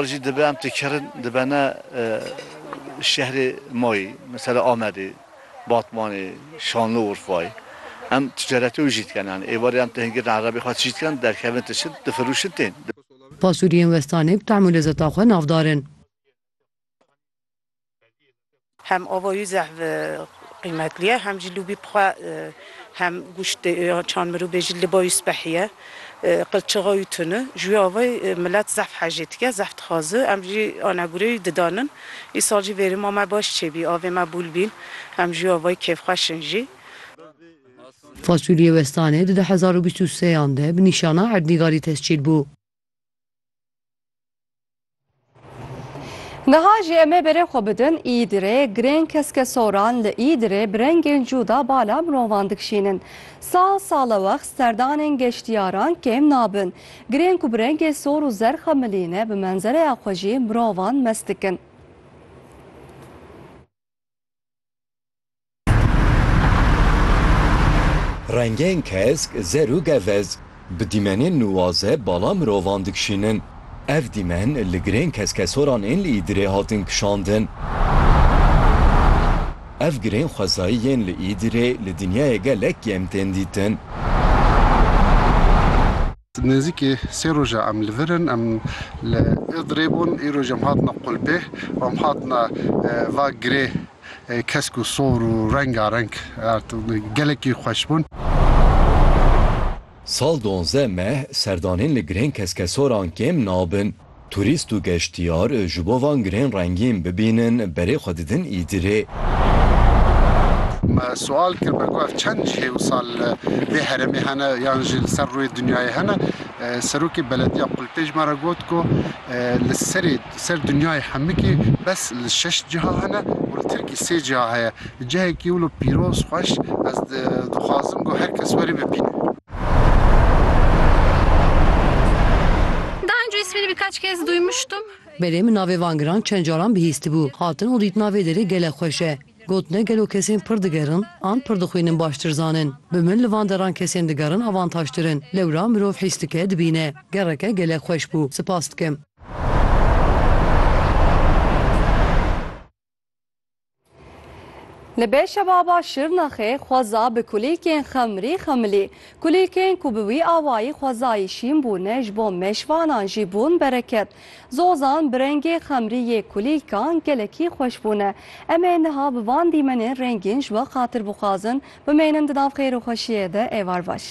Jî dibe em têkerin dibene şehrê ma yî mesela Amedê, Batmanê, Şanlı Urfayê. Em ticaretê wî jî dikin yanî êvarê em tihingirine erebê xwe tijî dikin derkevin tişin difirûşin tên. Pasuriyên westanê bi tehm û lezeta xwe navdar in. Hem ava wî zehv qîmetli ye hem jî lûbî bi xwe hem gûşt dê yan çand mirûbê jî li ba wî spehî ye qilçixa wî tuni ji wî ava milet zehv hejê dike zehv dixwazi em jî anegûrê wî didanin îsal jî vêrima me baş çêbî avê me bûl bîn em ji wî avayî kêfxweş in jî. Fasulye Westanê di du hezar û bîst û sê yan de bi nîşana Erdnîgarî tescîl bû. Niha jî em ê berê xwe bidin Îdirê, girên keskesoran li Îdirê bi rengên cûda bala mirovan dikişînin. Sal salewext serdanên geştiyaran kêm nabin. Girên ku bi rengê sor û zerx e milî ne bi menzereya xwe jî mirovan mest dikin. Rengên kesk, zer û gevez bi dîmenên nuwaze bala mirovan dikişînin. Ev dîmen li girên keskesoran ên li Îdirê hatin kişandin. Ev girên xwezayî yên li Îdirê li dinyayê gelek kêm tên dîtin. Nêzîkî sê roj e em li vir in. Em li Îdirê bûn. Îroj em hatina qulpê û em hatina va girê kesk û sor û rengareng. Gelekî xweş bûn. Sal di onzdeh meh serdanên li girên keskesoran kêm nabin. Turîst û geştyar ji bo van girên rengîn bibînin berê xwe didin îdirê. Me sual kir me got ev çend cihê wisa li vê heremê hene yan jî li ser rûyê dinyayê hene. Serokê belediya Qulpê ji me re got ku li serê ser dinyayê Hemikê bes li şeş ciha hene û li Tirkî sê ciha heye. Cihekî wilo pîroz xweş ez dixwazim ku her kes were bibîne. Belê min navê van giran çend caran bihîstibû hatin û dîtina vê derê gele xweş e. Gotine gelo kesên pir digerin an pir dixwînin baştir zanin. Bi min li van deran kesên digerin avantajtir in. Lewra mirov hîs dike dibîne. Gereke gelek xweş bû. Sipas dikim. Li Beşebaba Şirnexê xweza bi kulîlkên xemrî xemilî. Kulîlkên ku bi wî awayî xwezayî şîn bûne ji bo meşvanan jî bûn bereket. Zozan bi rengê xemrî yê kulîlkan gelekî xweş bûne. Em ê niha bi van dîmenên rengîn ji we qatir bixwazin. Bimeynin di nav xêr û xweşiyê de êvar baş.